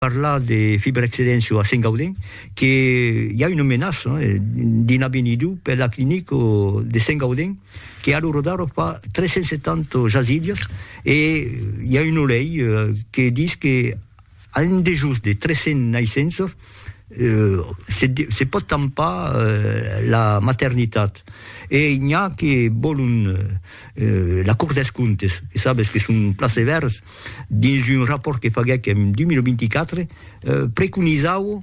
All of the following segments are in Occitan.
parlar de fibrexcedéncia a Sengaudin que i a una menaça d'una venida per la clinica de Sengaudin que a lo rodar fa 370 jasidas e i a una lei que dis que a un dejós de 300 naissenças se pòt tampar la maternitat e n'i a que vòlon la Cort dels Comptes que sabes que son plaseverts dins un rapòrt que faguèc en 2024, preconizau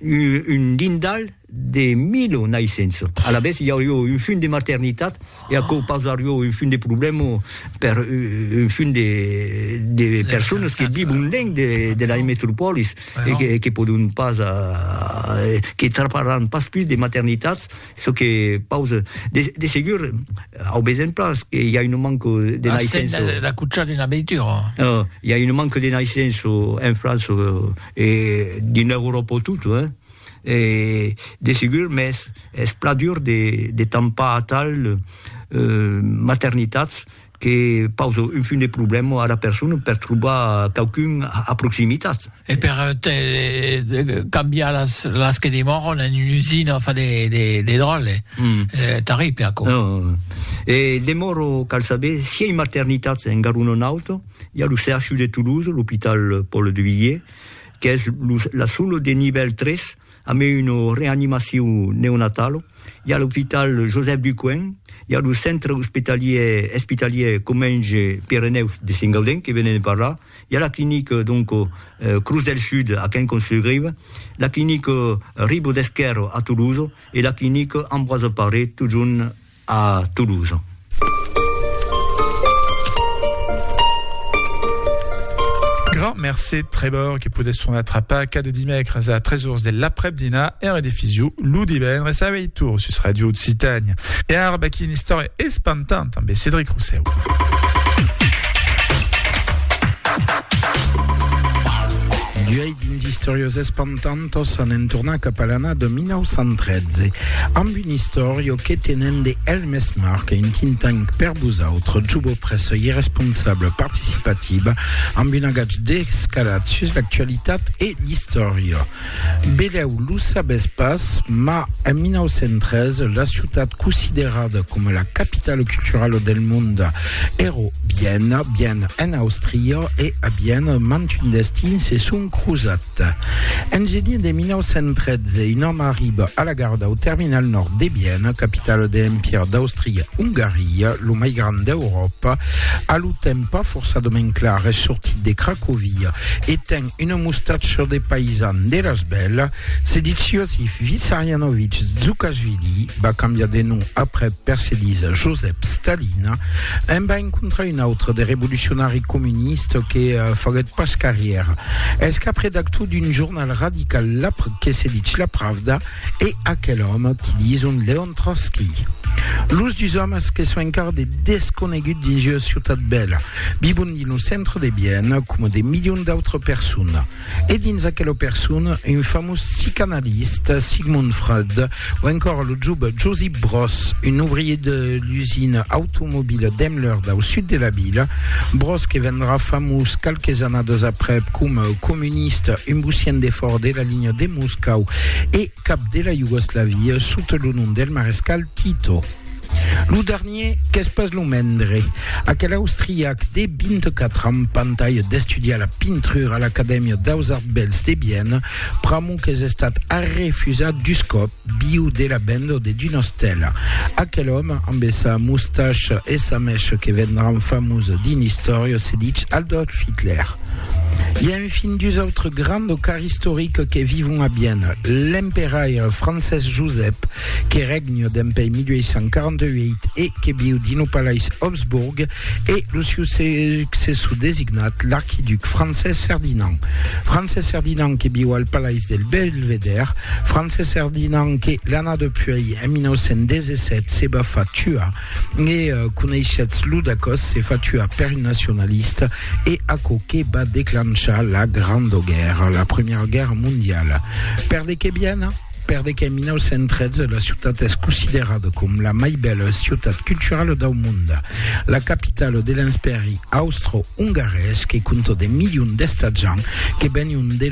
un dindal de milo naissenço. Alavetz, i aurió un fum de maternitat e aquò pausarió un fum de problèma per un fum de personas que vivon lenc de la metropòlis e que pòdon pas, que traparàn pas pus de maternitats Çò que pause, de segur, au besonh pas, que i a un manque de naissenço. Astèn de d'acuchar d'una veitura. I a un manque de naissenço en França e dins Euròpa tot, hein. E de segur, mès es plan dur de tampar atal maternitats Que pausa un fum de problèma ara persona per trobar quauqu'un a proximitat. E per cambiar las que demòran en una usina fa de dròlle, tarrible aquò. E demòro cal saber si ei maternitats en Garona Nauta, i a lo CHU de Toulouse, l'Hopital Paul Duvivier, qu'es la sola de nivèl 3, A mai una reanimacion neonatala, i a l'opital Josèp Ducoing, i a lo centre ospitalier espitalier Comenge Pirenèus de Sengaudèn que venèm de parlar, i a la clinica donc Cruz del Sud a Quincamps-sur-Grive, la clinica Ribaud-Esquèrre a Tolosa e la clinica Ambroise Paré totjorn a Toulouse. Grand mercé Trevor que podes tornar trapar cada dimècres a 3 ors de l'aprèp-dinar e redifisu lo divendres a 8 ors sus Radio Occitània. E ara vaquí una istòria espantanta amb Cédric Rosseu. D'uèi dins Istoriosas Tantos anem tornar cap a l'ana de 1913 amb un istòrio que tenen de el mes marc un think tank per vosautre, Jubo Pressa i responsable participativa amb un agatge descalat sus l'actualitat e l'istòria. Beleu lo sabes pas, ma en 1913 la ciutat considerada coma la capitala culturala del monde èra Viena, Viena en Àustria e a Viena mantun destin se son crosat. En genier de 1913, un òme arriba a la gara dau terminal nòrd de Viena, capitala de l'Empire d'Austria-Ongaria, lo mai grand d'Euròpa. A lo temps pas forçadament clar, es sortit de Cracovia e ten una mustacha de paisan de las bèlas. Se ditz Iosif Vissarianovich Dzoukashvili, va cambiar de nom aprèp per se dis Josep Stalin. En va encontrar un autre de revolucionari comunista que faguèt pas carrièra. Pierre es cap redactor d'un jornal radical la que se ditz La Pravda e aquel òme ti dison Leon Trotsky. Los dus òmes que son encara de desconegut dins ua ciutat bèla, vivon dins lo centre de Viena coma de milions d'autres personnes. E dins aquela persona, un famós psicanalista, Sigmund Freud, Ou encore lo job Josip Broz, un ouvrier de l'usina automobila Daimler dau sud de la vila. Broz que vendrà famós qualques annadas aprèp coma comunista, un bucian de fòrt de la linha de Moscau e cap de la Iugoslavia sota lo nom del marescal Tito. Lo dernier qu'es pas lo mendre, aquel austriac de 24 ans pantalha d'estudiar la pintrura a l'Acadèmia daus Arts Bèls de Viena, pr'amor qu'es estat arrefusat dus còp, viu de la benda de d'una stèla. Aquel òme, amb sa mustacha e sa mècha que vendràn famosa dins l'istòria, se ditz Adolf Hitler. I a enfin dus autres grands o cars istorics que vivon a Viena, l'emperaire Francés Josep, que regna dempuèi 1848 e que viu dins lo palais Habsburg, e lo siu successor designat, l'arquiduc Francés Ferdinand. Francés Ferdinand que viu al palais del Belvedèr, Francés Ferdinand que, l'ana depuèi, en 1917, se va far tuar, e coneishetz lo dacòs, se fa tuar per un nacionalista, e aquò que va declanchar la Granda Guèrra, la Primièra Guèrra Mondiala. Per de qué viena? Per de qu'en 1913 la ciutat es considerada com la mai bèla ciutat culturala dau mond, la capitala de l'Enspèri austro-ongarés que compta de milions d'estatjants que venion de